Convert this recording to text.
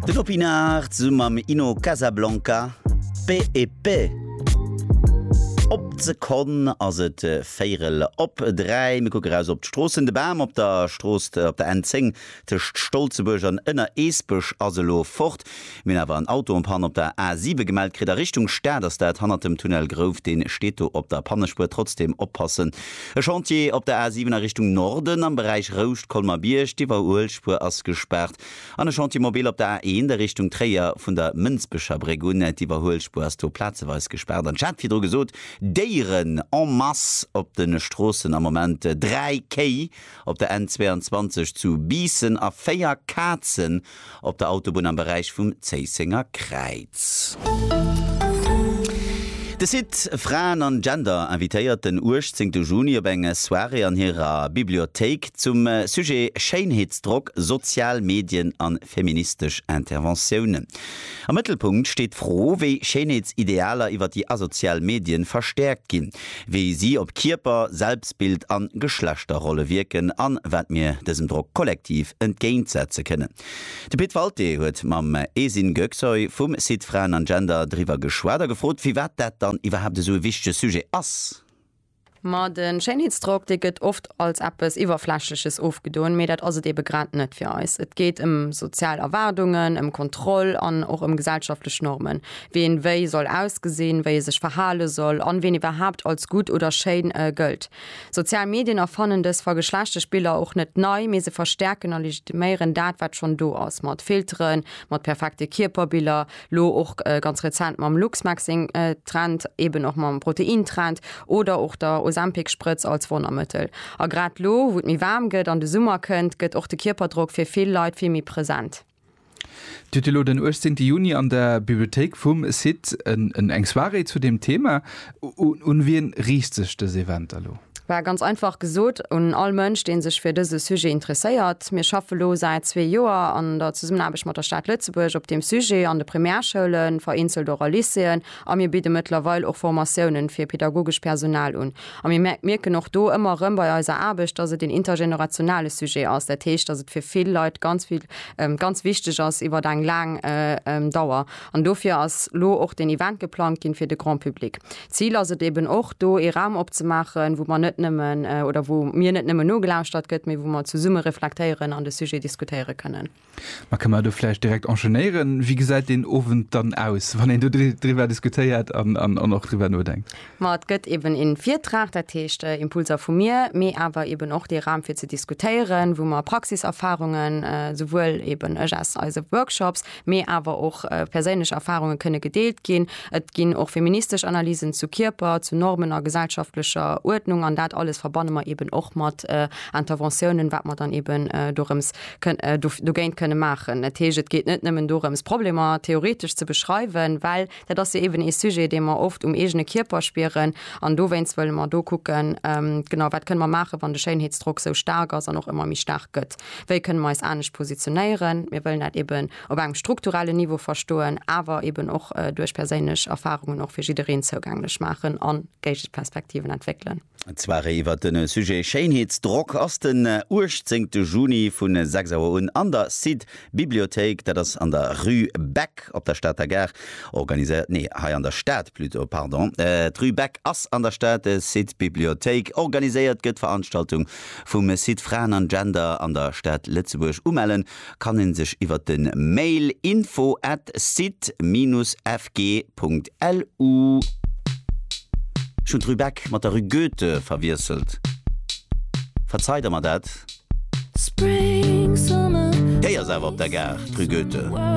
Den Opinard zu mam Ino Casablanca, Pe e pe. Op d'Sekonn ass et véirel op dräi. Mir kucke raus op d'Stroossen. De Bam op der Strooss, op der N10 tëscht Stolzebuerg an Ënnereesbech ass elo fort. Mir hunn awer en Auto en panne op der A 7 gemellt kritt. A Richtung Stad ass dat, hannert dem Tunnel Grouf. Deen steet do op der Pannespuer. Trotzdem oppassen. E Chantier op der A 7 a Richtung Norden am Beräich Rouscht, Colmer-Bierg. D'Iwwerhuelspuer ass gespaart. An e Chantier mobile op der A 1 a Richtung Tréier vun der Mënsbecher Bréck un. D'Iwwerhuelspuer ass do plazeweis gespaart. An ech hat virdru gesot, Déieren en masse op de Stroossen am Moment, 3 Kéi op der N 22 zu Biissen a 4 Kazen op der Autobunn am Beräich vum Zéissenger Kräiz. De Site Fraen an Gender invitéiert den 18 Juni op eng Soirée an hirer Bibliothéik zum Sujet Schéinheetsdrock, sozial Medien a feministesch Interventiounen. Am Mëttelpunkt steet d'Fro, wéi Schéinheetsidealer iwwer déi asozial Medien verstäerkt ginn. wéi si op Kierper, Selbstbild an Geschlechterrolle wierken an wat mir dësem Drock kollektiv entgéint setze kënnen. De Pit Walté huet mam Esin Göksoy vum Site Fraen an Gender driwwer geschwat a gefrot firwat dat dann iwwerhaapt esou e wichtege Sujet ass. Ma de Schéinheetsdrock, dee gëtt oft als eppes Iwwerflächleches ofgedoen, mee dat ass et ebe grad net fir eis. Et geet ëm sozial Erwaardungen, ëm Kontroll an och ëm gesellschaftlech Normen. Ween wéi soll ausgesinn, wéi e sech verhale soll an ween iwwerhaapt als gutt oder schéin gëllt. Sozial Medien erfannen dës vergeschlechteg Biller och net nei, mee se verstäerken a legitiméieren dat, wat schonn do ass, mat Filteren, mat perfekte Kierperbiller, lo och ganz rezent mam Luxmaxxing-Trend, eben och mam Protein-Trend oder och der Ozempic-Sprëtz als Wonnermëttel. A grad lo, wou et méi waarm gëtt an de Summer kënnt, gëtt och de Kierperdrock fir vill Leit vill méi present. Dir hutt elo den 18 Juni an der Bibliothéik vum CITT eng Soirée zu deem Thema. Un wien riicht sech dës Eventer elo? Well ganz einfach gesot un all Mënsch, dee sech fir dëse Sujet interesséiert. Mir schaffe lo säit zwee Joer an der Zesummenaarbecht mat der Stad Lëtzebuerg op deem Sujet an de Primärschoulen, vereenzelt och a Lycéeën, A mir bidde mëttlerweil och Formatiounen fir pedagogesch Personal un. A mir mierken och do ëmmer erëm bei eiser Aarbecht, dass et een intergenerationale Sujet ass. Dat heescht, dass et fir vill Leit ganz vill, ganz wichteg ass iwwert eng laang Dauer. An dofir ass lo och deen Event geplangt ginn fir de Grand public. D'Zil ass et eben och, do ee Raum opzemaachen, wou mer net nëmmen, oder wou mir net nëmmen nogelauschtert gëtt, mee wou mer zesumme reflektéieren an de Sujet diskutéiere kënnen. Ma ka mer do vläicht direkt enchaînéieren. Wéi gesäit deen Owend dann aus, wann een do driwwer diskutéiert an och driwwer nodenkt? Ma et gëtt eben ee Virtrag, dat heescht Impulser vu mir, mee awer eben och dee Raum fir ze diskutéieren, wou mer Praxiserfarungen, souwuel eben ech aus eise Workshops, mee awer och perséinlech Erfarunge kënne gedeelt ginn. Et ginn och feministesch Analysen zu Kierper, zu Normen a gesellschaftlecher Uerdnung an dat alles verbanne mer eben och mat Interventiounen, wat mer dann eben dorëms dogéint kënne maachen. Dat heescht, et geet net nëmmen dorëms, Problemer theoretesch ze beschreiwen, well dat ass jo eeben ee Sujet, dee mer oft um eegene Kierper spieren. An dowéinst wëlle mer do kucken, genau, wat kënne mer maachen, wann de Schéinheetsdrock esou staark ass an och ëmmer méi staark gëtt, wéi kënne mer eis anescht positionéieren. Mir wëllen dat eeben op engem strukturellen Niveau verstoen, awer eeben och duerch perséinlech Erfarungen och fir jiddereen zougänglech maachen a Géigeperspektiven entwéckelen. D'Soirée iwwer de Sujet Schéinheetsdrock ass den 18 Juni vu 6 Auer un an der Site Bibliothéik, dat ass an der Rue Beck op der Stater Gare, organiséiert, nee, hei an der Stad plutôt, pardon, d'Rue Beck ass an der Stad, Site Bibliothéik. Organiséiert gëtt d'Veranstaltung vum Site Fraen an Gender an der Stad Lëtzebuerg. Umellen kann een sech iwwert den Mail info at site-fg.lu Ech hunn d'Rue-Beck mat der Rue Goethe verwiesselt. Verzei der mer dat. Déi ass awer op der Gare, d'Rue Goethe.